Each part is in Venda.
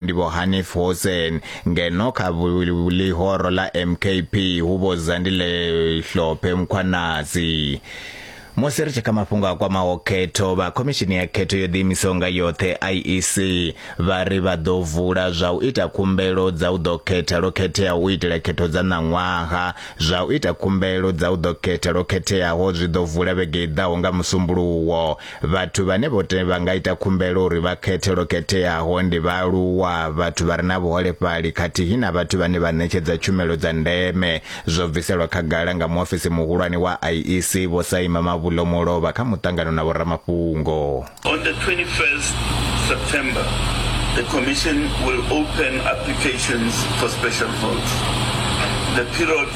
ndi vho Hanif Hoosen ngeno kha ḽihoro ḽa MKP hu vho Zandile Hlophe Mkhwanazi musi ri tshi kha mafhungo a kwamaho khetho vha khomishini ya khetho yo ḓiimisaho nga yoṱhe IEC vha ri vha ḓo vula zwa u ita khumbelo dza u ḓo khetha lwo khetheaho u itela khetho dza ṋaṅwaha zwa u ita khumbelo dza u ḓo khetha lwo khetheaho zwi ḓo vula vhege i ḓaho nga musumbuluwo Vhathu vhane vho te vha nga ita khumbelo uri vha khethe lwo khetheaho ndi vhaaluwa, vhathu vha re na vhuholefhali khathihi na vhathu vhane vha ṋetshedza tshumelo dza ndeme, zwo bviselwa khagala nga muofisi muhulwane wa IEC, Vho Saima Mabulo Mulovha kha muṱangano na vhoramafhungo. On the 21st September, the Commission will open applications for special votes. The period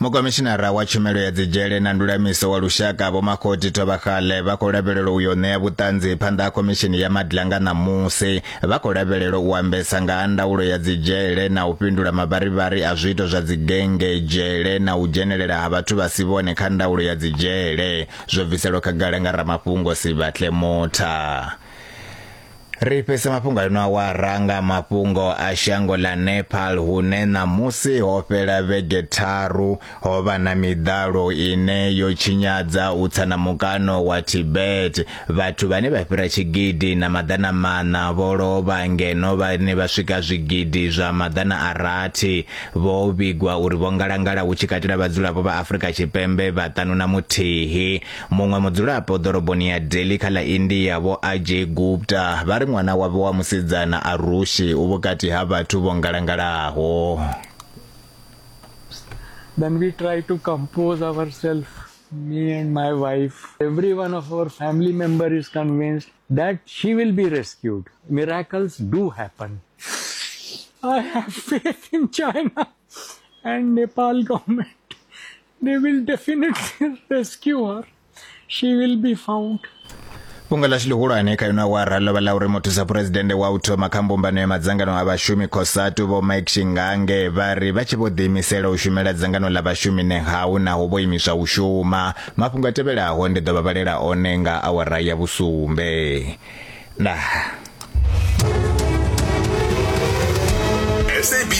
Mukomishinara wa tshumelo ya dzidzhele na ndulamiso wa lushaka Vho Makgoti Thobakgale vha khou lavhelelwa u yo ṋea vhuṱanzi phanḓa ha khomishini ya Madla nga ṋamusi. Vha khou lavhelelwa u ambesa nga ha ndaulo ya dzidzhele na u fhindula mavharivhari a zwiito zwa dzigennge, dzhele na u dzhenelela ha vhathu vha si vhone kha ndaulo ya dzidzhele, zwo bviselwa khagala nga ramafhungo Sibatle Motha. Ri fhese mafhungo a ino awara nga mafhungo a shango ḽa Nepal hune ṋamusi ho fhela vhege tharu ho vha na miḓalo ine yo tshinyadza u tsa na mukano wa Tibet. Vhathu vhane vha fhira tshigidi na maḓana maṋa vho lovha ngeno vhane vha swika zwigidi zwa maḓana a rathi vho vhigwa uri vho ngalangala hu tshi katela vhadzulapo vha Afrika Tshipembe vhaṱanu na muthihi. Muṅwe mudzulapo ḓoroboni ya Delhi kha ḽa India vho Ajay Gupta vha ri ṅwana wavho wa musidzana Arushi u vhukati ha vhathu vho ngalangalaho. Then we try to compose ourselves, me and my wife. Every one of our family member is convinced that she will be rescued. Miracles do happen. I have faith in China and Nepal government. they will definitely rescue her she will be found fhungo ḽashu ḽihulwane kha ino awara ḽo vha ḽa uri muthusa phuresidennde wa u thoma kha mbumbano ya madzangano a vhashumi cosatu vho mike shingange vha ri vha tshi vho ḓiimisela u shumela dzangano ḽa vhashumi nehawu naho vho imiswa u shuma mafhungo a tevhelaho ndi ḓo vha vhalela one nga awara ya vhusumbe nah